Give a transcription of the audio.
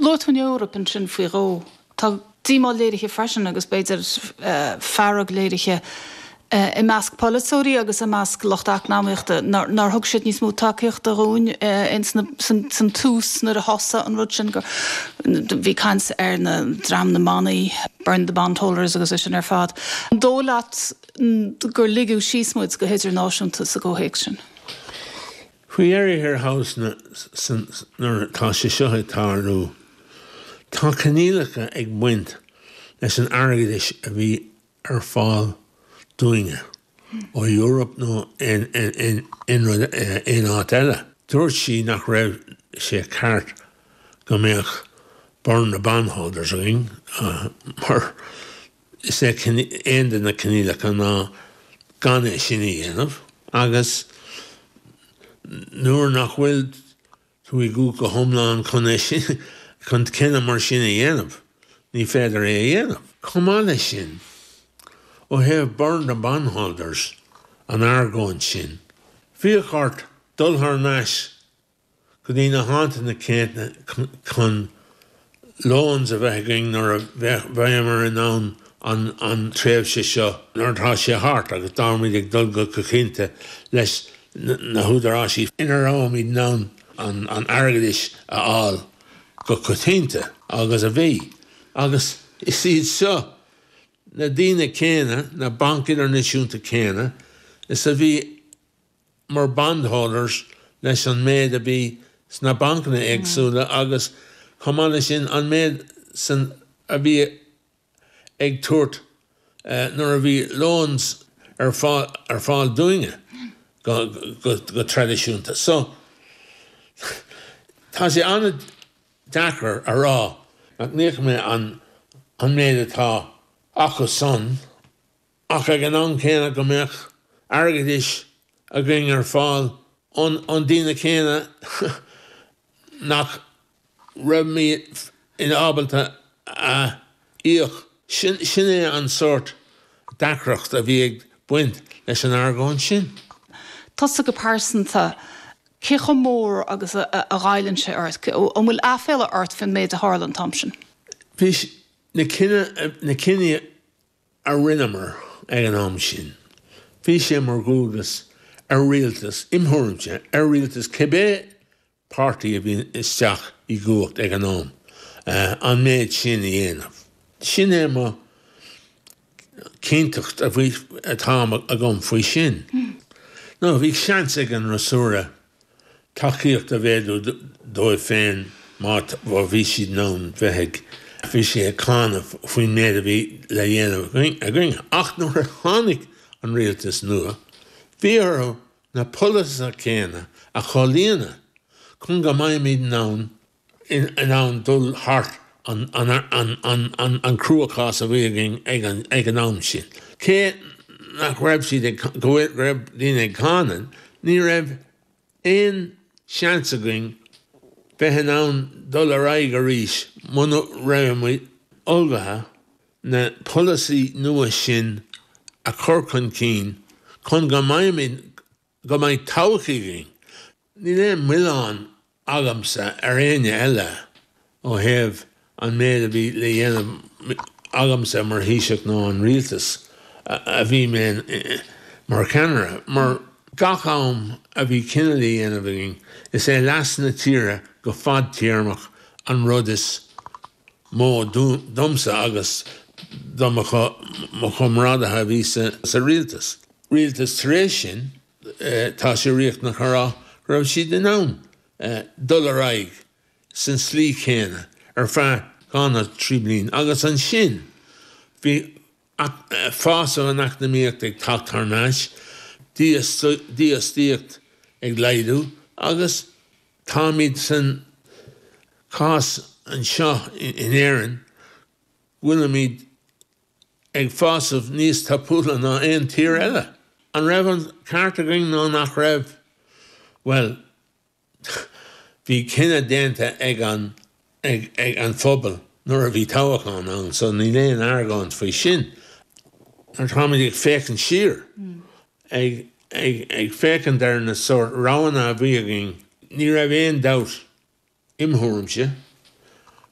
Luaigh tú an Eoraip ansin faoi dhó. Tá díomá léirithe freisin, agus b'fhéidir fearg léirithe, i measc polaiteoirí agus i measc lucht eacnamaíochta nár thug siad níos mó tacaíochta dhúinn san tús nuair a thosaigh an rud sin, bhí caint ar dhream na mbannaí, burn the bondholders agus é sin ar fad. An dóigh leat gur ligeadh síos muid go hidirnáisiúnta sa gcomhthéacs sin? Faoi dheireadh thiar thall tá sé seo ag tarlú. Tá coinníollacha ag baint leis an airgeadais a bhí ar fáil dúinne ó Eoraip nó aon aon rud aon áit eile. Dúirt sí nach raibh sé ceart go mbeadh burn the bondholders againn mar Is é ceann de na coinníollacha ná gan é sin a dhéanamh agus nuair nach bhfuil tú i gcumhacht go hiomlán chun cinneadh mar sin a dhéanamh, ní féidir é a dhéanamh. Chomh maith leis sin, ó thaobh burn the bondholders an argóint sin, bheadh ort dul thar n-ais go dtí na háiteanna céadna chun loans a bheith againn nuair a bheimear in ann an tréimhse seo nuair atá sé thart agus táimid ag dul go coitchianta leis na húdaráisí ina rabhamid in ann an airgeadais a fháil go coitchianta agus a bhí. Agus is iad seo na daoine céanna, na bainc idirnáisiúnta céanna is a bhí mar bondholders leis an méid a bhí sna bancanna éagsúla agus, chomh maith leis sin, an méid a bhí ag tabhairt nuair a bhí loans ar fáil dúinne go traidisiúnta. So, tá sé an-deacair a rá nach n-íoc mé an méid atá acu san. ach ag an am céanna go mbeadh airgeadais againn ar fáil ón daoine céanna nach rabhaimid ábalta a íoc. Sin é an sórt deacracht a bhí ag baint leis an argóint sin. Tusa go pearsanta, cé chomh mór agus a ghoilleann sé ort? An bhfuil aiféala ort faoin méid a tharla an t-am sin? Bhí na cinní a rinneamar ag an am sin, bhí sé mar dhualgas ar rialtas, im thuairimse, ar rialtas cibé páirtí a bhí isteach i gcumhacht ag an am, an méid sin a dhéanamh. Sin é an chinnteacht atá agam faoi sin. Nó bhí seans ag an fhreasúra tacaíocht a mhéadú dóibh féin má bhí siad in ann bheith ag. bhí sé ag cáineadh faoin méid a bhí le dhéanamh againn ach nuair a tháinig an rialtas nua bhí orthu na polasaithe céanna a chomhlíonadh chun go mbeimid in ann in ann dul thart an cruachás a bhí againn ag an am sin. Cé nach raibh siad ag go bhfuil go raibh daoine ag cáineadh, ní raibh aon seans againn bheith in ann dul ar aghaidh arís muna raibh muid ullmhaithe na polasaí nua sin a chur chun cinn chun go mbeidh todhchaí againn. Níl aon mhilleán agamsa ar éinne eile ó thaobh an méid a bhí le dhéanamh agamsa mar Thaoiseach nó an Rialtas a bhí mé in mar cheannaire, mar gach am a bhí cinneadh le dhéanamh againn, is é leas na tíre go fadtéarmach an rud is mó domsa agus do mo chomrádaithe a bhí sa Rialtas. Rialtas tar éis sin. tá sé riachtanach a rá go raibh siad in ann dul ar aghaidh san slí chéanna ar feadh dhá nó trí bliain agus ansin bhí fás san eacnamaíocht ag teacht thar n-ais, dífhostaíocht ag laghdú agus táimid san chás anseo in Éirinn go bhfuilimid ag fásamh níos tapúla ná aon tír eile. An raibh an ceart againn nó nach raibh? Bhuel, bhí cinneadh déanta ag an, ag, ag an phobal nuair a bhí toghachán ann so níl aon argóint faoi sin. Nuair atáimid ag féachaint siar, ag, ag, ag féachaint ar na sórt roghanna a bhí againn, ní raibh aon dabht, im thuairimse,